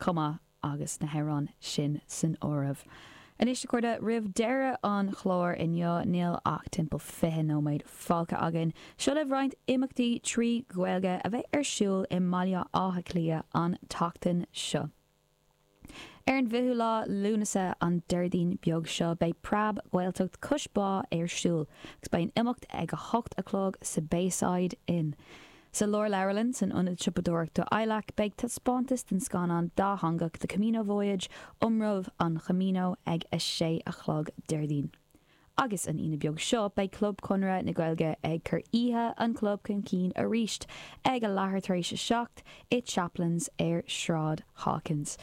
chomh maith agus na hamhráin sin san áireamh. Anois, a chairde, roimh deireadh an chláir inniu, níl ach timpeall 20 nóiméad fágtha againn. Seo libh roinnt imeachtaí trí Ghaeilge a bheidh ar siúl i mBaile Átha Cliath an tseachtain seo. Ar an bhfichiú lá Lúnasa, an Déardaoin beag seo, beidh Preab-Ghaeltacht Cois Bá ar siúl agus beidh an imeacht ag a hocht a chlog sa Bayside Inn. Sa Lárleabharlann, san Ionad Siopadóireachta ILAC, beidh taispeántas den scannán dátheangach The Camino Voyage, Iomramh an Chamino, ag a sé a chlog Déardaoin. Agus an Aoine beag seo, beidh Club Chonradh na Gaeilge ag cur oíche an chlub chun cinn arís, ag a leathuair tar éis a seacht, i Chaplains ar Shráid Hawkins.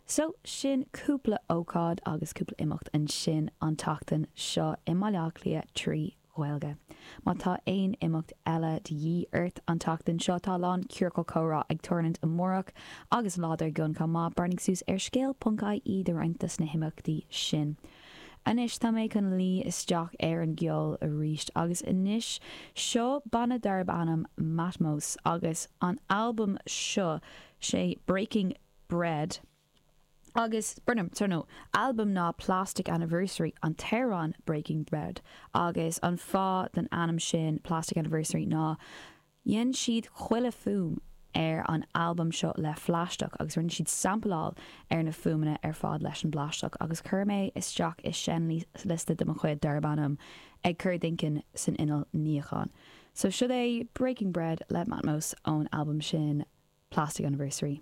So, sin cúpla ócáid agus cúpla imeacht ansin an tseachtain seo i mBaile Átha Cliath trí. Ghaeilge. Má tá aon imeacht eile de dhíth ort an tseachtain seo, tá a lán ciorcal comhrá ag tarlúint amárach agus an lá dár gcionn chomh maith, breathnaigh suas ar scéal ponc ie do roinnt dos na himeachtaí sin. Anois tá mé chun luí isteach ar an gceol arís agus anois seo banna darb ainm Matmos agus an albam seo, sé Breaking Bread. agus b'ainm don albam ná Plastic Anniversary, an t-amhrán Breaking Bread, agus an fáth don ainm sin Plastic Anniversary ná dhein siad chuile fuaim ar an albam seo le phlaisteach agus rinne siad sampláil ar na fuaimeanna ar fad leis an bplaisteach agus chuir mé é isteach i seinnliosta de mo chuid darb ainm Ag Cur D'inchinn san Inneall Níocháin so siod é Breaking Bread le Matmos ón albam sin Plastic Anniversary.